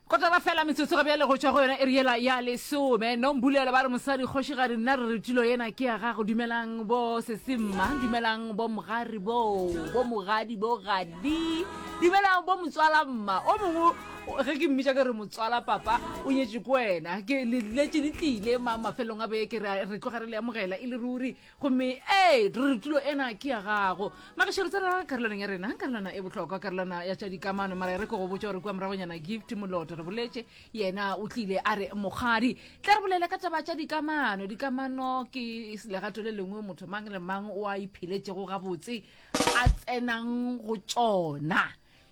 go tara fela metsotso ga bjale go tšwa go yona e riela ya lesome nombulela ba re mosadi kgošigadi nna re re tulo yena ke ya gago dumelang bo sesemma dumelang bo mogari boo bo mogadi bo gadi dumelang bo motswala mma o mongwe ge ke mmitša ke re motswala papa o nyetše ko wena ke leletse le tlile ma mafelong a beke re tloga re le amogela e le ruri gomme ee re re tulo ena ke ya gago magasho re tsena karolwaneng ya rena karolwana e bohlokwa karolwana ya tša dikamano mara e re ke go botša gore kua moragonyana gift moloto re boletše yena o tlile a re mokgadi tla re bolela ka taba tša dikamano dikamano ke legato le lengwe motho mang le mang o a ipheletšego gabotse a tsenang go tšona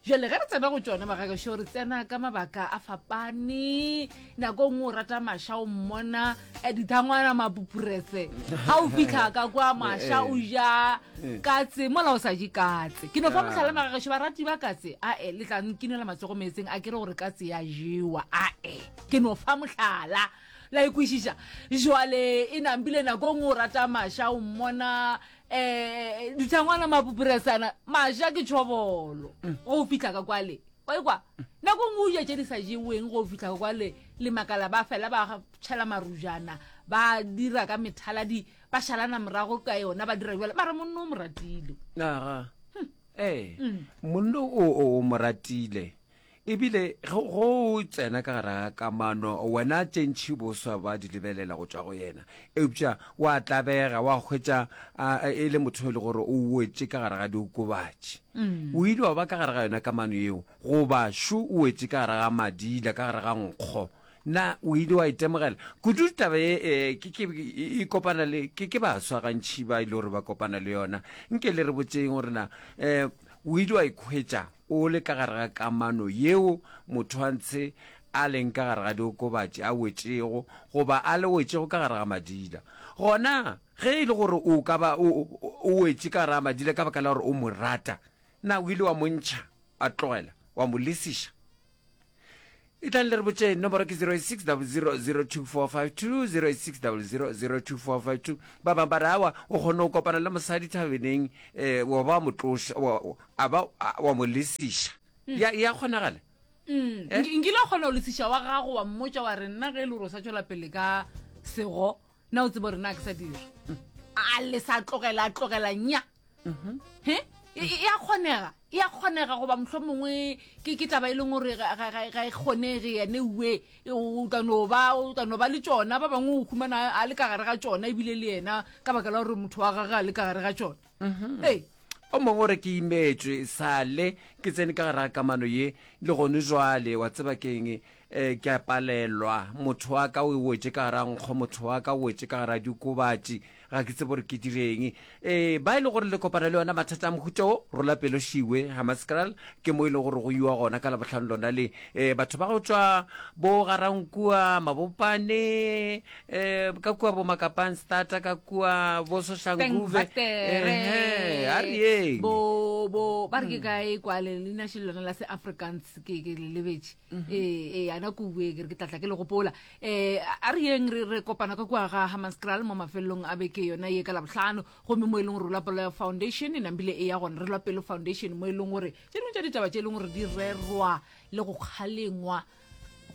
jale ge re tsena go tšona magakašo re tsena ka mabaka a fapane nako ngwe o rata maša o mmona eh, dithangwana mapupurese ga o fitlha ka kwa maša o ja katse mola o sa je katse ke no fa motlhale magakašo barati ba katse ae le tla nkinela matsogo meetseng a ke re gore katse ya jewa ae ke no fa motlhala la ikwešiša jwale e nambile nako ngwe o rata maša o mmona um ditshangwana mapupuresana maja ke tšhobolo mm. go fitlha ka kwale kwaekwa nako ngwe o ja tše di sa jeweng go fitlha ka kwale le makala ba fela ba tšhela marujana ba dira ka methaladi ba šalana morago ka yona ba dira jale mara monno o mo ratile aga ee mm. monno o o mo ratile E bile ge go tsena ka gara kamano, wena tše ntši boswa ba di lebelela go tšwa go yena. Eupša o a tlabega, o a hwetša a, e le motho yo e le gore o wetše ka gare ga diokobatši. O ile wa ba ka gare ga yona kamano yeo, goba šo o wetše ka gare ga madila, ka gare ga nkgo. Na o ile wa itemogela? Kudu taba ye e, ke, ke, e kopana le, ke, ke baswa gantši ba e le gore ba kopana le yona. Nke le re botšeng gore na um o ile wa ikhwetša O le ka gare ga kamano yeo motho a ntshe a leng ka gare ga diokobatši, a wetšego, goba a le wetšego ka gare ga madila. Gona, ge e le gore o ka ba o, o wetše ka gare ga madila ka baka la gore o mo rata, na o ile wa mo ntšha, wa tlogela, wa mo lesiša? e tlang le re botše nomoro ke 0600024520 0600024520 ba bangwe ba re awa o kgone go kopana le mosadi thabeneng um eh, wa ba wa mo tloša wa- wa- a ba a- wa mo lesiša ya ya kgonagala Mm. Eh? Nki- nkile wa kgona go lesiša wa gago wa mmotsa wa re nna ge e le gore o sa tswela pele ka sego na o tsebo rena a ke sa dira a le sa tlogela a tlogela nya mhm. he e, e, e a kgonega e a kgonega goba motlho mongwe ke taba e leng gore ga e kgonege yane ue o ka no ba o ka no ba le tsona ba bangwe o humana a le ka gare ga tsona ebile le yena ka baka la gore motho wa gage a le ka gare ga tsona mhm. ee o mongwe gore ke imetswe sale ke tsene ka gara kamano ye le gone jwale wa tseba keng E, ke a palelwa. Motho wa ka o e wetše ka gara nkgo, motho wa ka o wetše ka gara diokobatši. Ga ke tsebe gore ke direng. E, ba e le gore le kopana le yona mathata a mohuta wo, rola pelo šiwe, Hammaskral, ke mo e le gore go iwa gona ka Labohlano lona le. E, batho ba go tšwa bo Garankua, Mabopane, e, ka kua bo Makapanstata, ka kua bo Soshanguve. Ehe, a re yeng. bo bo ba re ke ka e kwa le leina še lona la se afrikaans ke ke le lebetše ee ee ana ko bue ke re ke tlatla ke le gopola um a re yeng re re kopana ka kua ga hamaskral mo mafelelong a beke yona ye ka labotlhano gomme mo e leng gore o lapoloya foundation nambile e ya gona re lwa pelo foundation mo e leng gore tse dingwe tsa ditaba tse e leng gore di rerwa le go kgalengwa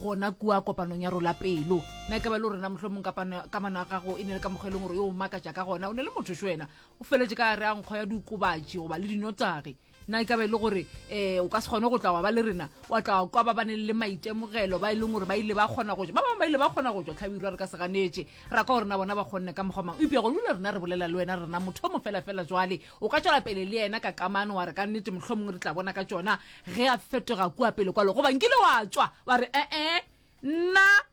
gona kua kopanong ya rola pelo na e ka ba le gorena motlho mong kamano ya gago e ne le ka mokgwa e leng gore yo o makatša ka gona o ne le motho xe wena o feletse ka re a nkgo ya diokobatši goba le dinotsage na e ka be e le gore um o ka se kgone go tla wa ba le rena wa tla wa kwa ba ba neng le maitemogelo ba e leng gore ba ile ba kgona go ja ba bangwe ba ile ba kgona go ja tlhabirwa re ka se ganetše ra kwa gore na bona ba kgonne ka mokgwa mang eupša go lule rena re bolela le wena rena motho o mo felafela jwale o ka tswela pele le yena ka kamano wa re ka nnete motlho mongwe re tla bona ka tsona ge a fetoga kua pele kwalo goba nkile wa tswa wa re ee nna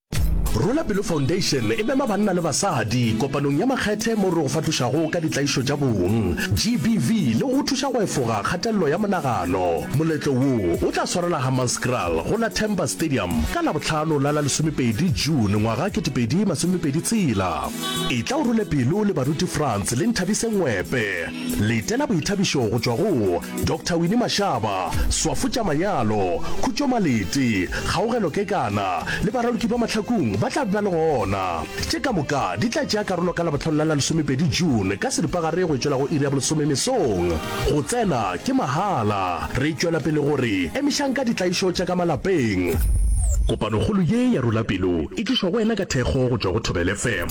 Rwela Pelo Foundation e mema banna le basadi kopanong ya makgethe moo re go fatošago ka ditlaišo tša bong, GBV, le go go thuša go efoga kgatelelo ya monagano. Moletlo wo o tla swarela Hammanskraal go la Temba Stadium ka Labohlano la la lesomepedi June ngwaga ketepedi masomepedi tshela. Etla o rwele pelo le baruti Frans le Nthabise Ngwepe. Letela boithabišo go tšwa go Doctor Winnie Mashaba, Swafo tša Manyalo, Khutšo Malete, Kgaogelo Kekana le baraloki ba Mahlakung ba tla be ba le gona. Tše ka moka di tla tšea karolo ka Labohlano la la lesomepedi June ka seripagare go e tšwela go iri ya bolesome mesong. Go tsena ke mahala. Re tšwela pele go re emišang ka ditlaišo tša ka malapeng. Kopanokgolo ye ya Rula Pelo e tlišwa go wena ka thekgo go tšwa go Thobela FM.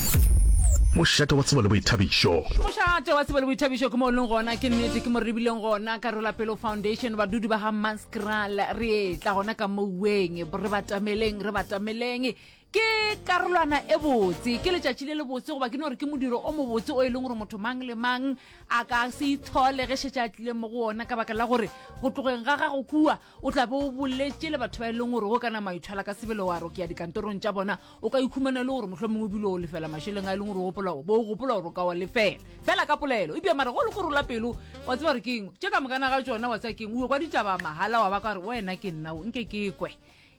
Mošate wa tsebo le boithabišo. Mošate wa tsebo le boithabišo ke mo o leng gona, ke nnete, ke mo re rebileng gona. Karolapelo Foundation, badudi ba ga Maskral, re etla gona ka mouweng, re batameleng, re batameleng. Ke karolwana e botse, ke letšatši le le botse, goba ke no re ke modiro o mobotse o e leng gore motho mang le mang a ka se itshole ge šetše a tlile mo go ona ka baka la gore go tlogeng ga gago kua o tla be o boletše le batho ba e leng gore o ka na maithwala ka sebele wa rokeya dikantorong tša bona o ka ikhumana e le gore mohlho mongwe o dilo o lefela mašeleng a e leng gore o gopola bo o gopola gore o ka wa lefela fela ka polelo e bja mara go le gore o la pelo wa tseba gore keng tše ka mokana ga tsona wa tseba keng o kwa ditaba mahala wa ba ka gore wena ke nna o nke ke kwe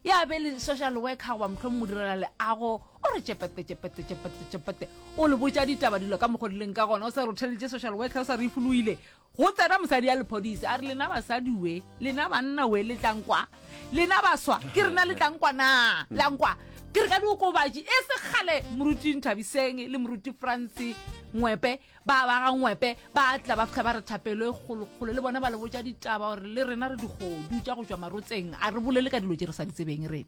ya be le social worker goba mohlho mongwe o direla leago o re tšepete tšepete tšepete tšepete o le botša ditaba dilo ka mokgwa dileng ka gona o sa rotheletše social worker o sa re e foloile Go tsena mosadi ya lephodisa a re, Lena basadi we, lena banna we, le tla nkwa? Lena baswa, ke rena le tla nkwa na? La nkwa? Ke re ka diokobatši e se kgale moruti Nthabiseng le moruti Franse Ngwepe ba ba ga Ngwepe ba tla ba fihla ba re thapelo e kgolokgolo le bona ba le botša ditaba gore le rena re digodu tša go tšwa marotseng a re bolele ka dilo tše re sa di tsebeng re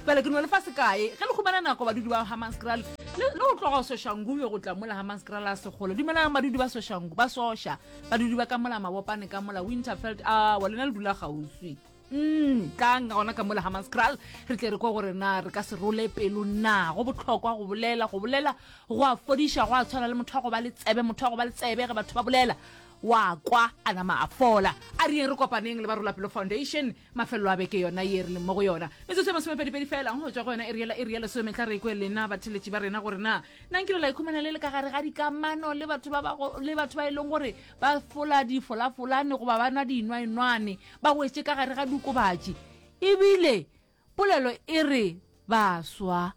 bale mm. ke no lefa sekae ge le humana nako badudi ba hamanscral le go tloga o soshangu yo go tla mola hamanscral a segolo dumelang badudi ba soshangu ba sosha badudi ba ka mola mabopane ka mola winterfeld a wa lena le dula gauswi mm, tlang ga gona ka mola hamanscral re tle re kwa gore na re ka se role pelo na go botlhokwa go bolela go bolela go a fodiša go a tshwana le motho wa go ba le tsebe motho wa go ba le tsebe ge batho ba bolela wa kwa a nama a fola a reng re kopaneng le ba rola pelo foundation mafelelo a beke yona ye re leng mo go yona metsotso ya masomepedipedi fela go tswa go yona eri yela eri ya lesome tla re kwe lena batheletši ba rena gore na na nkile la ikhumana le le ka gare ga dikamano le batho ba bago le batho ba e leng gore ba fola difolafolane goba ba nwa dinwaenwane ba wetše ka gare ga dukobatši ebile polelo e re baswa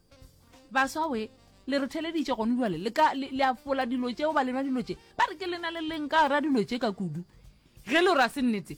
baswa we le re theleditše gone jale le ka le le a fola dilo tšeo ba lenwa dilo tše ba re ke lena le leng ka gara dilo tše ka kudu ge le ra se nnete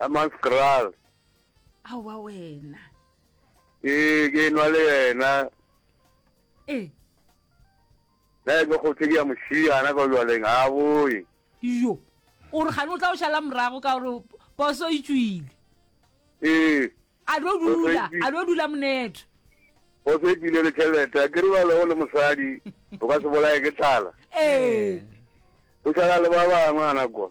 Hammanskraal. Aowa wena. Ee, ke nwa le yena. Ee. Na ke go tshedi ya moshiyana ka jwaleng a boye. Yo. O re gane o tla o shala morago ka gore poso e tswile. Ee. A lo dula, a lo dula monetho. Poso e tswile le tšhelete, a ke re balo le mosadi, o ka se bolaye ke tlala. Ee. O shala le ba bangwe ana kwa.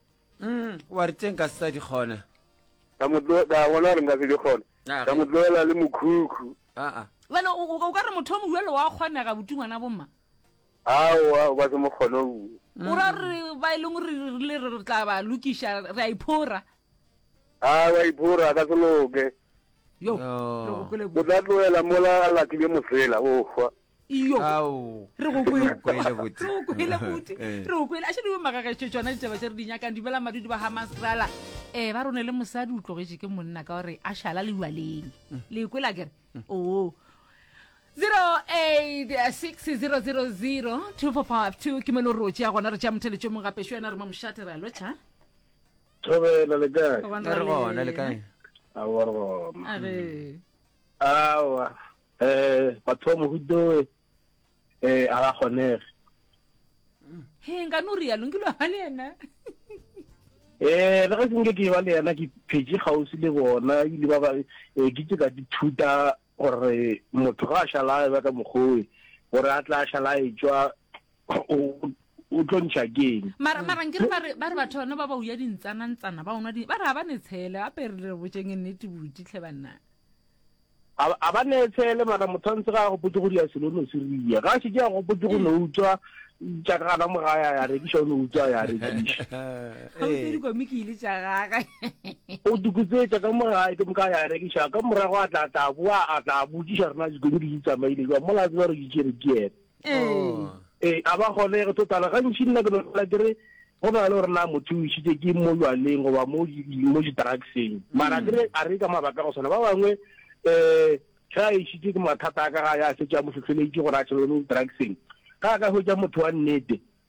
mm wa re teng ka se sa di kgona ka mo tlo ka bona gore nka se di kgona Ah, ka ge- mo tloela le mokhukhu aa bale o o- o ka re motho o moduelo wa kgonega buti ngwana bomma aowa o ka se mo kgone o bue o ra re ba e leng gore re rile re re tla ba lokiša re a iphora a wa iphora a ka se loke yo Yo. re gopole o tla tloela mola a latlile mosela o hwa iyo re go kwele bote re go kwele a šedi bo magagetše tšona ditaba tše re di nyakang dumela madudi ba ga masrala um eh, ba rone le mosadi o tlogetše ke monna ka gore a šala le ualeng mm. le kwela kere mm. oo 0860002452 ke melo rotše ya gona re tša motheletšo mong gape xo yena re mo mošate re a lotšha thobela le kae re gona le kae awa re gona awa Eh batho ba mohutoe eh a ga kgonege. He nka no rialo nke lo ba le yena. Eh le ga se nke ke ba le yena ke phetse gausi le bona ile ba ba eh ke tse ka dithuta gore motho ga a šala ba ka mogoe gore a tla šala e tswa o tlo ntšha ke eng mara mara nkere ba re ba re batho bana ba ba uya dintsana ntsana ba onwa di ba re ha ba ne tshele a pere re botseng nnete buti tlhe banna a ba ne tshele mara motho ntse ga go potse go dia selo no se riya ga se ja go potse go no utswa tša ka gana mo ga ya ya re ke sho no utswa ya re ke sho ha o tsedi go miki ile tša ga ga o dukutse tša ka mo ga ke mo ka ya re ke sho ka morago a tla tla bua a tla butša rena di go di tsamaile jwa mola tswa re di tšere ke ee a ba gone go totala gantši nna ke nopela ke re go na le gore na motho o isitse ke mo jwaleng goba mo di-drugseng mara ke re a re ka mabaka go swana ba bangwe um ga a isitse ke mathata a ka ga ya setse a mo tlhotlheletse gore a tšhelele mo di-drugseng ga a ka hwetsa motho wa nnete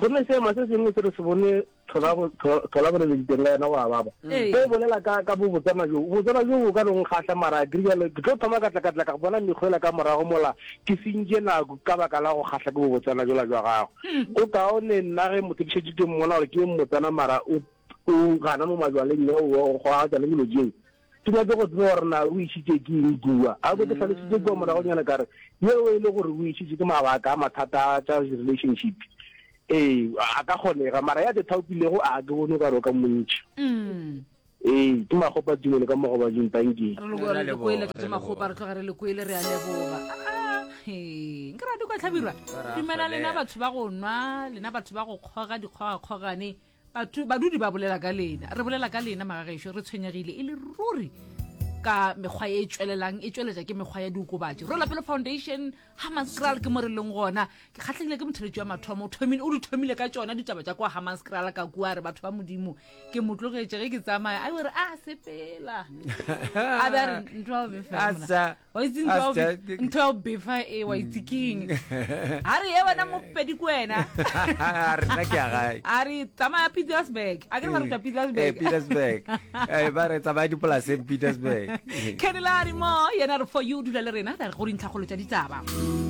gomme seema se sengwe se re se bone tholabolelo diteng ka yena go ababa se o bolela ka bobotsana joo bobotsana joo o ka nong kgatlha mara a krijalo ke tlo thoma katlakatla ka bona mekgwela ka morago mola ke sentše nako ka baka la go kgatlha ke bobotsana jola jwa gago go kaone nna ge motho ke šetše ke mmona gore ke mmotsana mara o gana mo majwaleng yo go aga tsone dilo jeo Ke nyake go tseba gore na o išitše ke eng kua. A be ke hlalošitše kua moragonyana ka re, Yeo e le gore o išitše ke mabaka a mathata a tša relationship. Ee, a ka kgonega, mara ya tše thaopilego a ke bone o ka re o ka mo ntšha. Ee, ke Makgopa Tumelo ka mo Gobading. Tanki. Re leboga, re lekoele ke makgopa re tloga re lekoele re a leboga He, nke rate kwa tlhabirwa dumela lena batho ba go nwa lena batho ba go kgoga dikgogakgogane Batho, badudi ba bolela ka lena, re bolela ka lena magagešo, re tshwenyegile e le ruri ka mekgwa e tšwelelang e tšweletša ke mekgwa ya diokobatši rolapelo foundation hamanscral ke mo re leng gona ke kgatlhegile ke motheletši wa mathomo o thomile o di thomile ka tšona ditaba tša kwa hamanscral ka kua re batho ba modimo ke mo tlogetše ge ke tsamaya a be re a sepela a be a re ntwa o befela wa itse ntho ya go be- ntho ya go befa e wa itse keng a re ye wena mopedi ko wena rena ke ya gae a re tsamaya petersburg a ke re ba ruta Eh, petersburg petersburg Eh, ba re tsamaya dipolaseng petersburg kenela re mo yena re for you dula le rena ra re go dintlhakgolo tša ditaba